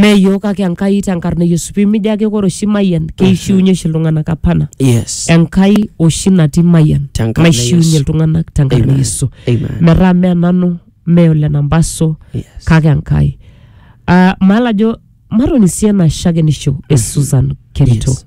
meyiok kake enkai tenkarna e yesu pimijo ake kore oshi mayian keishiunye oshi iltung'anak apana yes enkai oshi natii mayian Tenkarna e naishiunye Yesu. iltung'anak tenkarna e Amen. yesu Amen. metaa me nanu me ole nambaso Yes. kake enkai Ah, maala ajo matoni sii ena shakenisho e susan kerito Yes.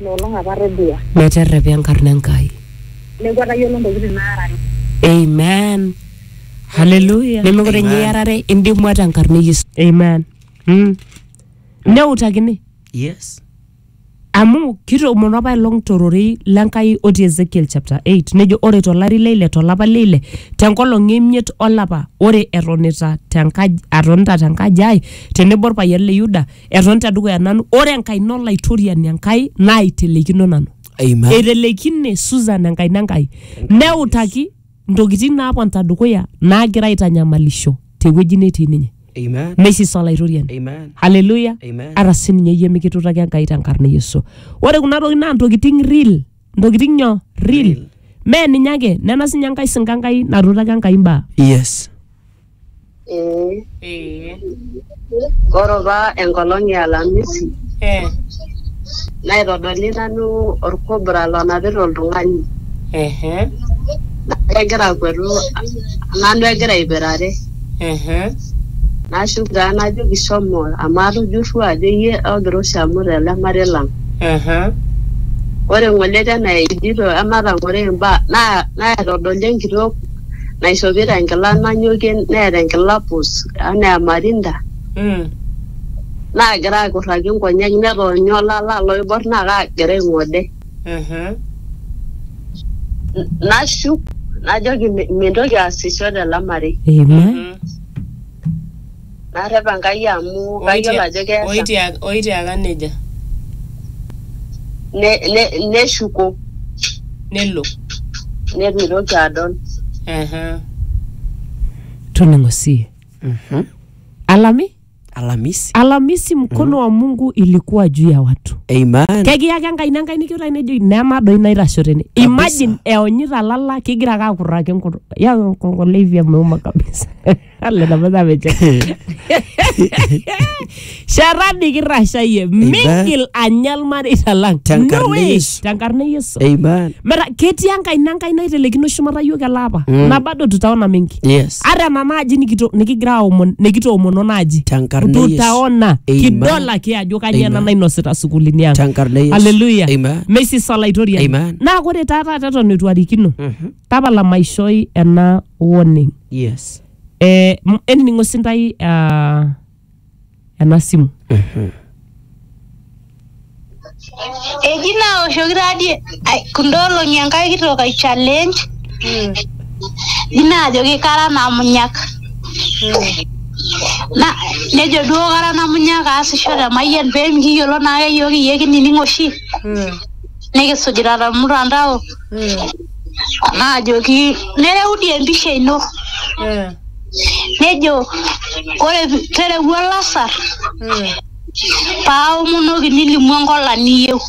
ina olong apa atodua. Meterrepa enkarna Enkai. Neeku atayiolo ntokitin naarare. Amen. Hallelujah. Nemekure ninye iarare indimua tenkarna e Yesu. Amen. Mm. Neutakini. Yes. Amu kitoomono apa ilong tororei l'Enkai otii Ezekiel chapter 8 nejo ore tolari le ile tolapa le ile tenkolong e imiet olapa ore etonita tenkaji atonita tenkaji ai tenebo orpayian le Yuda eton tedukuya nanu ore enkaina olaitoriani enkai naaiteleikino nanu Amen. eiteleikine susan enkaina enkai neutaki ntokitin naaponita dukuya naagira aitanyamalisho tewueji netii ninye Amen. meisisa olaitoriani Amen. haleluya Amen. ata sininye iyie mikitutaki enkai tenkarna e yesu ore kuna tokitin naa ntokitin real ntokitin nyo real Real. mee ninye ake nena sinye enkai sinka enkai natutaki enkai mbaa Yes. Ee. Ee. Ore apa enkolong e alamisi Ee. naitodoli nanu olkobra lonapita oltung'ani Ehe. naa kegira akuetu nanu egira aipirare Ehe. nashuk taa najoki shomo amu atujurrua ajo iyie ogira oshi amut ele marei lang. Ehe. Ore ng'ole tena ejoito ematang'oro imbaa naa naitodoli enkitok naishopito enkila nanyokie neeta enkila pus anaa emarinda Mm. naagira akurraki nkonyek netoonyo olala loibor naa kaagira aing'ode. Mhm. N- Nashuk najoki "Mi- mintoki aasisho tele marei. Amen. Mhm. Narrep Enkai amu kayiolo ajo keesa. Oitiaka, oitiaka neja. Ne, ne, neshuko Nelo. neitu eitoki adol. Aha. Toning'o sie. Mhm. Alami, Alamisi. Alamisi mkono wa Mungu ilikuwa juu ya watu. Amen. Kekiyaki enkaina Enkai nikiutai nejoki nena doi naitasho tene. Kabisa. Imagine eonyita lala kigira ake akurraki enkutuk. Yau enkongo leivia meuma kabisa. Alle na mata meje. Sharani kirashayie mingil anya ilmareita lang. Tenkarna No way. Yesu. Tenkarna Yesu. Amen. Mera ketii enkaina enkai naitelekino shumata yiok ele apa. Mm. Na bado tutaona mingi. Yes. Ata nena aji nikito- nikigira aomon nikitoomono naaji. Tenkarna Yesu. Tutaona Amen. kidol ake ajo kanyoo ena Amen. nainosita sukuulini ang. Tenkarna Yesu. Hallelujah. Amen. Messi Salaitorian. Amen. Naa ore taa taata eton eitu arikino. Mhm. tapala maishoi ena warning yes eh, m- enining'o sintai uh, ena simu eji naoshoki taadi ai- kunda olong'i enkae kitok ai challenge eji naajoki kara namunyak na nejo duo kara namunyak aasisho te mayian pee mikiyiolo naake yiok iyie kinining oshi nikisujita tormutandao naajoki nereu dii empisha ino nejo ore pi- terewua olasar paaomonoki nilimu enkola niyieu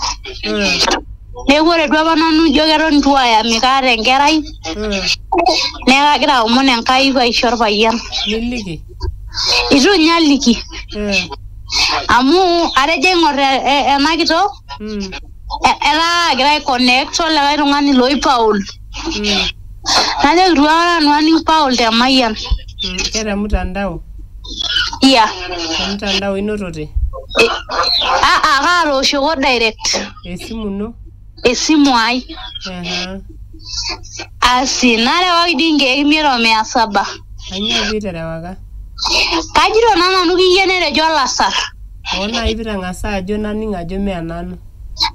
neeku ore duo apa nanu ijo keton itu ayami kaata enkerai neeku kagira aomon Enkai paisho orpayian. niliki Itu ninye aliki. Eh. Amu atejo aing'or e- e- ena kitok, Mm. e- etaa agira ai connect olikae tung'ani loi Paul. Mm. Najoki itu aikata nanu aning Paul te Mayian. Mm. Keta mtandao. Iya. Mtandao inotote. Ah, ah, kaatooshoko direct. Esimu ino. esimu ai Aha. asi narewaki dii nkeek imiet o mia saba Kanyoo piiterewaka? kajito naa nanu kiyie netejo olasar Oo nai pitang'asa ajo naning' ajo mee nanu.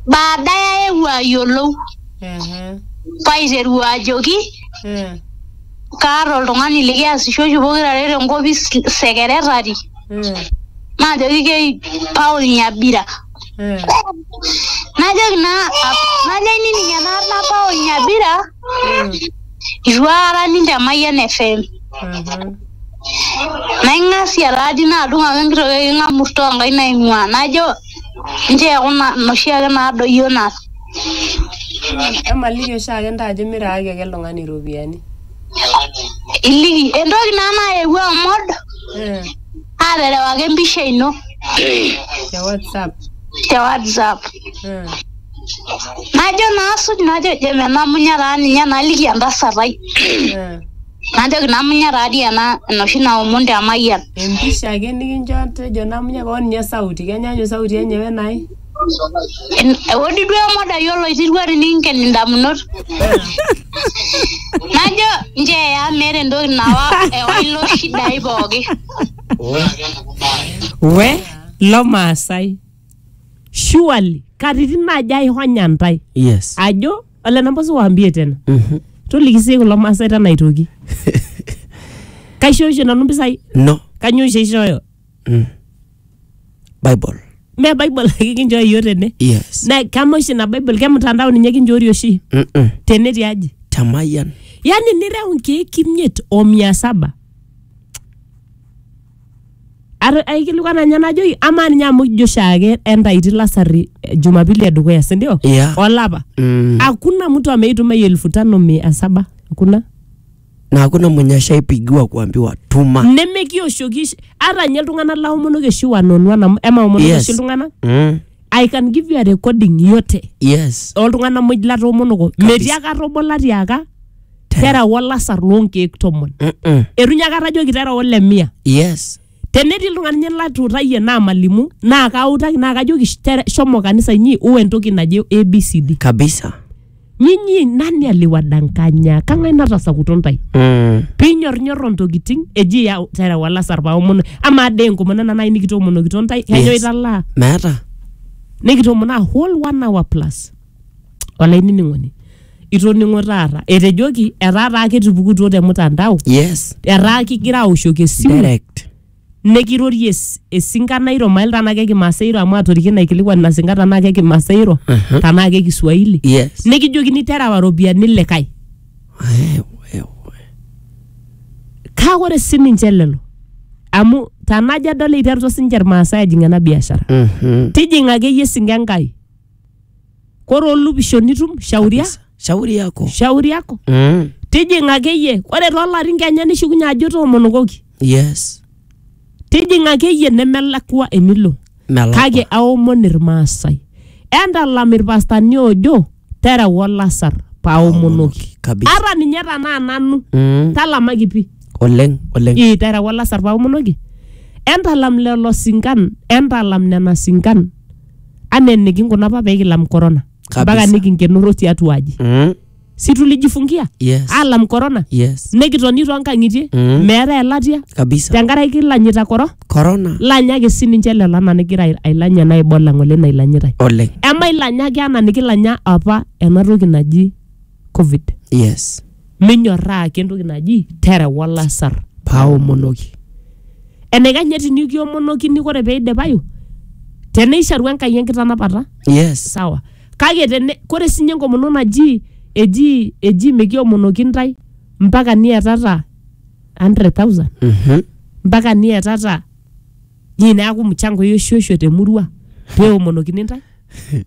baadaye aewuo ayiolou Ehe. paiteru ajoki Eh. kaata oltung'ani likiasisho oshi pokirare tenkopis sekeretari Eh. najoki kei Paul Nyabira najoki naa najoki nining ena nabao nyabira itu aikata aning te Mayian FM naing'asia taadi nadung ake enkiti toki king'amurto onkaik naing'ua najo nchoo eku na inoshi ake nadoyio naa emaliki oshiake intae ajo miraaki ake ele tung'ani iropiyiani iliki entoki naa nayewuo amod Eh, aterewaki empisha ino te WhatsApp. te WhatsApp. Mm. Najo naa asuj najo je menamunya taa ninye naliki entasat ai. Mm. Najoki namunya taa dii ena enoshi naomon te Mayian. Empisha ake nikincho tejo namunya kewon ninye sauti kenyaanyuk sauti enye wenai. En- Eodi duo emodai oloitirua tininken indamunot. Najo njeeya meeta entoki nawa ewa ilo shidai pooki. we lo maasai surely katitin naaji aihonya ntae yes ajo ole nabo siwaambie tena Mhm. toliki sii kulo maasai tena aitoki kaishooisho nanu mpisai no kanyoo oshi aishooyo bible me bible ake kinchooyo yiok tene yes na kama oshi ina bible kemtandao ninye kinchoori oshi Mm-mm. tene tiaji tamayian yani nireu nkeek imiet o mia saba Ar- aikilikuana ninye najoki amaa ninye amu ijo oshiake entaiti lasari eh, jumapili edukuya sindio Yeah. olapa Mm. hakuna mtu ameituma hiyo elfu tano mia saba hakuna na hakuna mwenye ashaipigiwa kuambiwa tuma nemekioshoki oshi- ata nye iltung'anak laomonoki oshi one on one amu emaomonoki Yes. oshi iltung'anak mm. i can give you a recording yote yes oltung'anak muj latoomonoko metii ake atobola tiaka tera wolasar loonkeek tomon Mm-mm. etu nye akata ajoki tera ole mia yes Tenetii iltung'ana ninye latuutayie naamalimu naa kautaki naa kajoki "Sh- tere- shomo kanisa inyi uwe entoki naje ABCD. kabisa Nyinyi nani aliwadanganya? Kang'ae natasakuto ntae? mm. Pinyornyorro ntokitin eji ya terewa lasar paomono amaa dee enkomono ena nai nikitoomonokito ntae kanyo Yes. italaa meeta nikitoomono a whole one hour plus. olainining'oni itoning'o taata etejoki etaa taa ketupukutuo te mutandao yes etaa kigira aoshoki esimu direct nekirorie es- esinka nairo mail tanaa ke kimaasai iro amu atoriki naikilikuan ina sinka tanaa ke kimaasai iro Mhm. tanaa ke kiswahili yes nikijokini terewa ropiyiani likae Wewe, wewe. kake ore sininche lelo amu tanajo adol eiterutua sininche irmaasai ajing ena biashara Mhm. tijing'a akeyie esinka enkai kore olupisho nitum shauria Kabisa. shauri yako shauri yako mm. tijing'a akeyie ore toolarin kenya nishukunye ajo toomonokoki yes tijing'a akeyie nemelakua enilo melakwa kake aomon irmaasai entalam irpastani oojo tereu olasar paaomonoki kabisa ata ninye tanaa nanu mm. talamaki pi oleng oleng ii tereu olasar paaomonoki entalam lelo sinkan entalam nena sinkan anaa enikinko apa pee kilam corona Kabisa. mpaka nikinkenoro tiatua aji Mm. si tulijifungia Yes. alam corona Yes. nikitoni toonkang'itie Mm. meetae elatia Kabisa. tenkaraki ilanyita koro Corona. lanyaki sininche lelo anaa nigira ai- ailanya naa ibola ng'ole nailanyitae Oleng. emailanyaki anaa nikilanya apa ena toki naji covid yes minyorraa ake entoki naji tereu olasar paaomonoki enaikanye tinikiomonokini kore peidipayu teneisharu enkai enkitanapata yes sawa kake tene kore sinye enkomono naji eji eji mikiomonoki ntae mpaka niatata 100,000 Mhm. mpaka niatata Nyii neaku mchango eoshuosho te murua pee eomonokini ntae?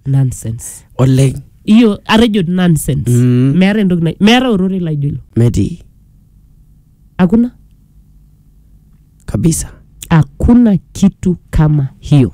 Nonsense. oleng Iyo atejo nonsense. Mm. Meeta entoki nai meeta ororei laijo ilo. metii Hakuna kabisa hakuna kitu kama hiyo.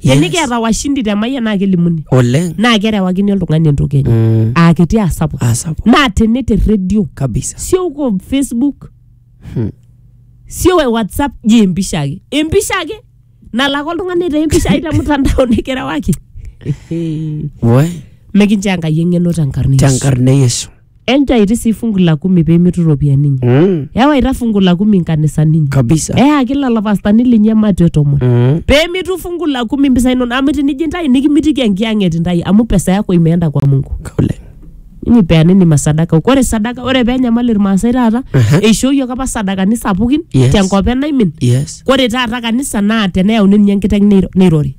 Yes. tenikiata washindi te mayian naa kelimuni oleng naa kerewakini oltung'ani entoki enye Mm. aa kiti aa sapuk asapuk naa tene te redio kabisa sio uko facebook Hmm. sio we whatsapp je empisha ake empisha ake nalak oltung'ani etaa empisha ai te mtandao nikirewaki we mekinchoo enkai eng'eno tenkarna Yesu. tenkarna e yesu enjaiti sii fungu la kumi pee mitu iropiyiani inyi Mm. ewaita fungu la kumi nkanisani inyi Kabisa. eyaki lelo pastani linyi ematio tomon Mm. pee mitu fungu la kumi mpisai inono amu tinijo intae nikimitiki enkiyang'et intae amu pesa yako imeenda kwa mungu Kaule. ninyi peanini masadaka ore sadaka ore pee enyamali irmaasai taata Aha. eishooyioki apa sadakani sapukin Yes. tenkop enaimin Yes. ore taata kanisa naa teneyauni ninye enkiteng neiro- neirori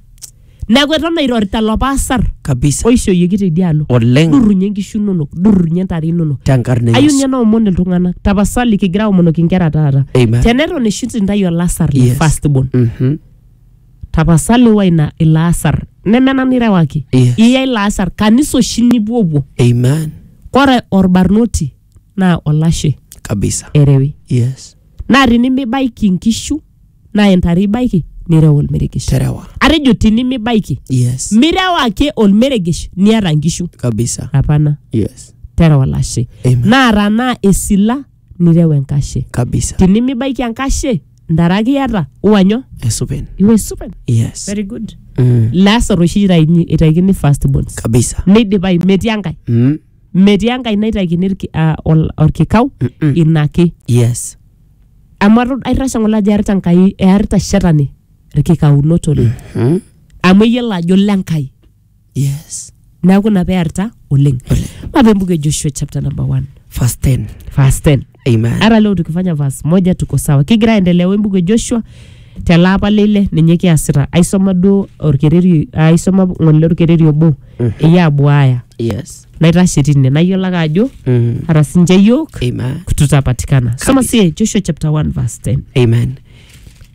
neeku eton airorita lopa asar kabisa oishooyioki teidialo oleng durrunye inkishu inonok durrunye intare inonok tenkarna e ayieu Yesu. ninye naomon iltung'anak tapasali kigira aomonoki inkera taata Amen. teneton eshut intayu olasar le Yes. first born Mhm. tapasali wa ina ilo asar neme nanu irewaki Yes. iya ilo asar kanisa oshi nipuopuo Amen. kore orbarnoti naa olashe kabisa erewi yes naa tinimibaiki inkishu naa intare ibaiki nireu olmeregesh terewa atejo tinimibaiki yes mireu ake olmeregesh niata nkishu kabisa apana yes terewa olashe Amen. naa tanaa esila nireu enkashe kabisa tinimibaiki enkashe ntare ake iata uanyo esupen iwesupen yes very good mm. lasar oshi itaini itaikini first bonds kabisa neidipai metii enkae mm. metii enkae naitaikini irki- ah, ol- orkikau Mm-mm. ina ake yes amu atu- aitashe ng'ole ajo earita Enkai earita shetani irkikaunot oleng Hmm? amu eyiolo ajo le Enkai Yes. neeku ina pearita oleng mape mbuku e Joshua chapter number 1 Verse 10. verse 10 Amen. hata leo tukifanya verse moja tuko sawa kigira aendelea we mbuku e Joshua tele apa leile ninye kiasita aisoma duo orkereri aisoma ng'ole orkereri obo eyie abuaya Yes. naitashe tine nayiolo ake ajo Mm. hata sinche yiok Amen. tutapatikana soma Kabisa. sie joshua chapter 1 verse 10 Amen.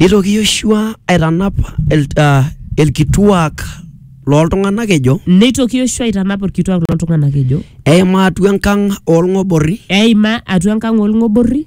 Nitoki Yoshua aitanap el, uh, elkituak looltung'anak ejo neitoki yoshua aitanap orkituak loltung'anak ejo eima atua enkang' oolng'oborri eima atua enkang' olng'oborri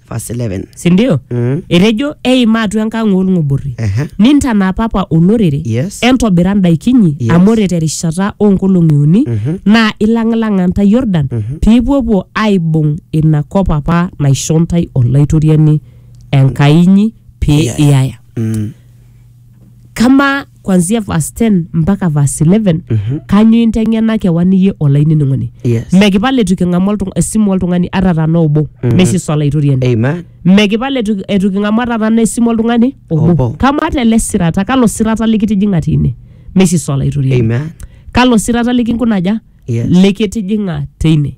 verse 11 sindio Mm. etejo eima atua enkang oolng'oborri Ehe. nintanapapa olorere Yes. entobira ndaikinyi Yes. amu ore terishata oonkolong'i uni naa ilang'ilang'a ntae yordan piipuopuo aibung ina kop apa naisho ntae olaitoriani enkai inyi pee Iyaya. iyaya Mm. kama kwanzia verse 10 mpaka verse 11 Mhm. kanyo inteng'ena kewan iyie olainining'oni Yes. mekipal etu king'amu oltung- esimu oltung'ani ata tana obo Mhm. meshiso olaitoriani Amen. mekipal etu etu king'amu ata tana esimu oltung'ani Obo. obo kama ata ele sirata kalo sirata likitijing'a tine meshiso olaitoriani Amen. kalo sirata likinkunaja Yes. likitijing'a teine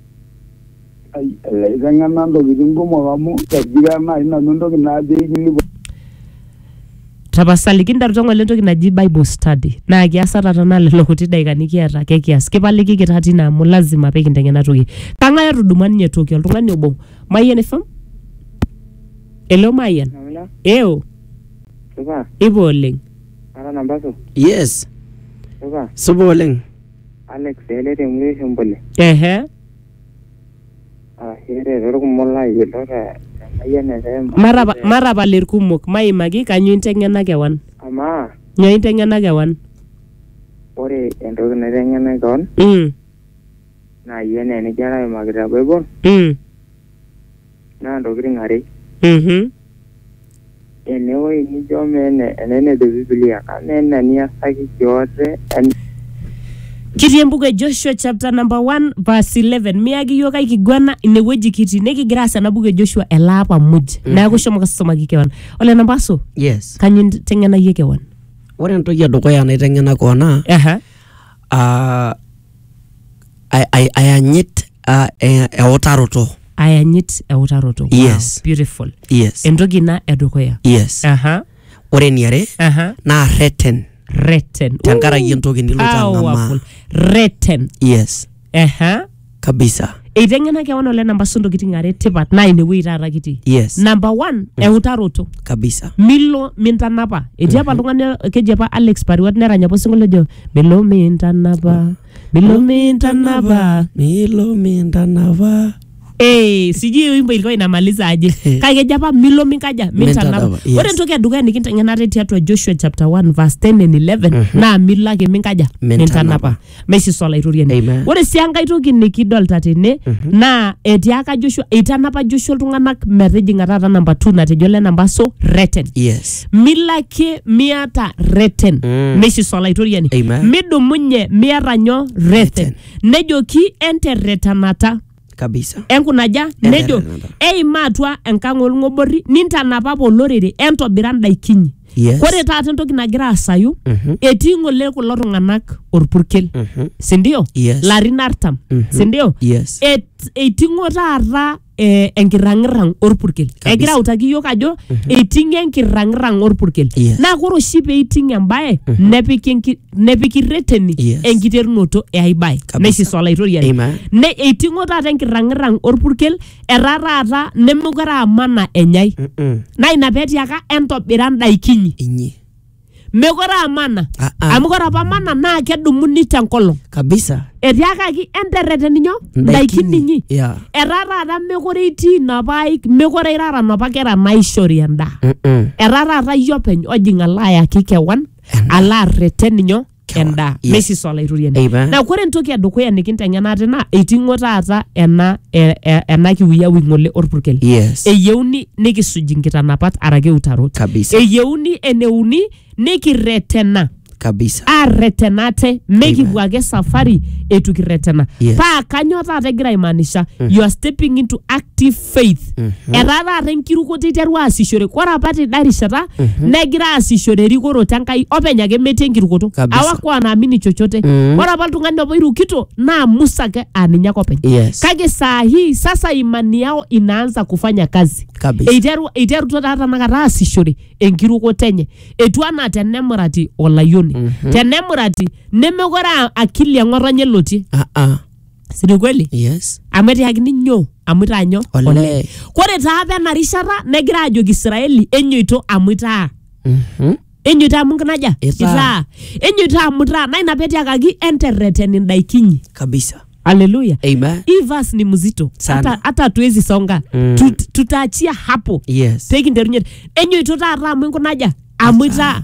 Ai, Ilaiteng'ena ntokitin kumok amu egira naaji nanu entoki najo aikilikuan. tapasali kinteru tong'ole entoki naji bible study naa kias ata tenaa lelo kuti daikani kiata ake kias kipalikiki taa tine amu lazima pekintengen ena toki kang'ae otudumua ninye toki oltung'ani obo mayian ifam hello mayian Namina, eo supa, ipo oleng ara nambasu, yes supa. supa oleng Alex ele te mwisho mbole. ehe Arashu ere torkumok laayilo te Mayian FM. matapa matapal irkumok maimaki kanyoo inteng'ena kewan Amaa nyoo inteng'ena kewan ore entoki naiteng'ena keon mm, naaji enaa enijo alo aimaki te Bible mm. naa ntokitin are. Mhm. Enewoi nijo mee ene ene nejo Biblia kama ena niasaki kiote en Kitii embuku e Joshua chapter number 1 verse 11 miyaki iyiook ai kiguana inewueji kitii nikigira aas ena buku e Joshua ele apa muj neeku shomo kasomaki kewan ole nampaso Yes. kanyo inteng'enayie kewan Ore entoki edukuya naiteng'ena koon naa Aha. ah, ay- ay- ayanyit ah, eh, eutaroto ayanyit eutaroto wow, Yes. beautiful yes entoki ina edukuya yes aha ore eniare aha naa reten reten tenkaraki entoki niloito ang'amaa powerful reten yes aha kabisa eiteng'ena kewan ole namba su ntokitin are tipat naa inewueji taata kitii Yes. namba one eutaroto kabisa milo mintanapa etii apa oltung'ani keji apa alex pariwat nerany apa osinkolio ojo milo mintanapa milo mintanapa milo mintanapa Eh, sijui hiyo wimbo ilikuwa inamaliza aje kake keji apa milo minkaja mintanapa Mintanapa, yes. ore entoki edukuya nikinteng'enate tiatua joshua chapter 1 verse 10 and 11 naa milo ake minkaja Mintanapa. mintanapa meisisa olaitoriani Amen. ore sii enkae toki nikidolta tene naa etiaka joshua eitanapa joshua iltung'anak metijing'a taata namba 2 natejo le namba so reten Yes. milo ake miata reten Mm. meisisa olaitoriani Amen. midumunye miata nyo reten nejoki enterretanata kabisa enkunaja Enterere nejo nanta. eima atua enkang olng'oborri nintanap apa olorere entobira ndaikinyi Yes. kore taata entoki nagira asayu Mhm. etii ng'ole kulo tung'anak orpurkel Mhm. sindio Yes. larin artam Mhm. sindio yes Et- eiting'o taata eh, enkirrang'irrang orpurkel Kabisa. egira autaki yiok ajo eiting'o enkirrang'irrang orpurkel Yes. naa kore oshi peiting embaye nepiki enki- nepiki reteni Yes. enkiterunoto e ai bae Kabisa. neisisa olaitoriani Amen. ne eiting'o taata enkirrang'irrang orpurkel etaa taata nemekure aa mana enyai Mm-mm. naa ina petiaka entobira ndaikinyi inyi mekore aa mana Ah, ah. amu kore apa mana naa kedumuni tenkolong kabisa etiakaki enterreteni nyoo ndaikin inyi yeah. etaa taata mekore itii inapa aik mekore irara napa kera naishori endaa Mm-mm. etaa taata iyie openy ojing alo ayaki kewan Endaa. alo arreten ninyo Kewa. endaa Yes. meisisa olaitoriani Amen. na kore entoki edukuya nikinteng'ena ate naa eiting'o taata ena e- e- ena kiuyawi ng'ole orpurkel Yes. eyieuni nikisuj nkitanapat arake utarot Kabisa. eyieuni eneuni nikirretena kabisa arretena ate mekipuo ake safari eitu kirretena Yes. paa kanyoo taata egira aimaanisha you are stepping into active faith etaa taata enkirukoto eiterua aasishore ore apa teda rishata negira aasishore erikoroto enkai openy ake metii enkirukoto Kabisa. awakuwa naamini chochote Mhm. ore apa oltung'ani obo irukito naa musa ake aa ninye ake openy Yes. kake saa hii sasa imani yao inaanza kufanya kazi Kabisa. eiteru eiterutua taa tanakata aasishore enkirukoto enye etu anaa tenemurati olayioni tenemurati nemekore aa akili eng'otonye elotie Ah, ah. si ni kweli yes amu etiakini nyoo amu itaa nyoo Olee. kore taa apa ena rishata negira ajoki israeli enyoito amu itaa Mhm. enyoito amu nkinaja Itaa. enyoito amu itaa naa ina petiakaki enterreten indaikinyi kabisa haleluya amen hii verse ni mzito Sana. hata hata hatuwezi songa Mm. Tut- tutaachia hapo yes pekinterunye enyoito taata amu inkunaja amu itaa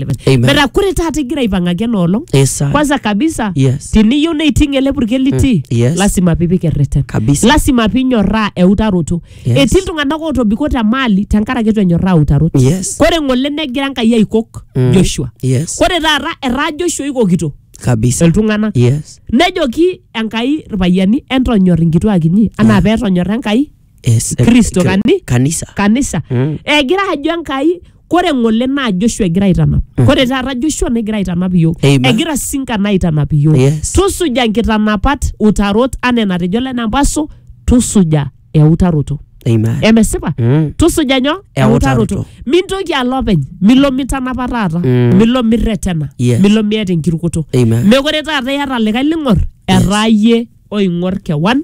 Amen. metaa kore taata igira aipang'aki ena olong Eh, sir. kwanza kabisa Yes. tiniyieu neiting ele purkel litii Mm, yes. lasima piipik erreten Kabisa. lasima pinyorraa eutaroto Yes. etii iltung'anak ootobiko te maali tenkaraki itu enyorraa eutaroto Yes. kore ng'ole negira enkai aikok Mm. joshua Yes. kore taata etaa joshua oikokito Kabisa. iltung'anak Yes. nejoki enkai irpayiani entonyor inkituak inyi anaa Yeah. peetonyorra enkai Es- eh, Kristo kri- kani? kanisa kanisa Mm. egira ajo enkai kore ng'ole naa joshua egira aitanap kore taata joshua negira aitanap iyiok Amen. egira sinkan aitanap iyiok Yes. tusuja nkitanapat utarot anaa enatejo lenampaso tusuja eutaroto amen emesipa Mm. tusuja nyoo Eutaroto. mintoki alo openy milo mitanapa taata Mm. milo mirretena Yes. milo miata enkirukoto Amen. mekore taata iyata likae ling'or etaa yie oing'or kewan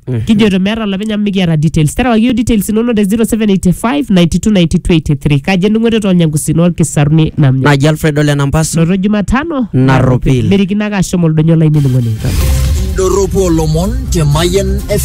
kijoto meeta olopeny amu mikiata details terewaki yiok details inonok te 0785 929283 kaji endung'oto toonyankusini orkisaruni namnya naji alfredo lenampaso noto jumatano Narropil. merikino ake ashom oldonyo lai nining'o ninye Doropo Lomon te Mayen FM.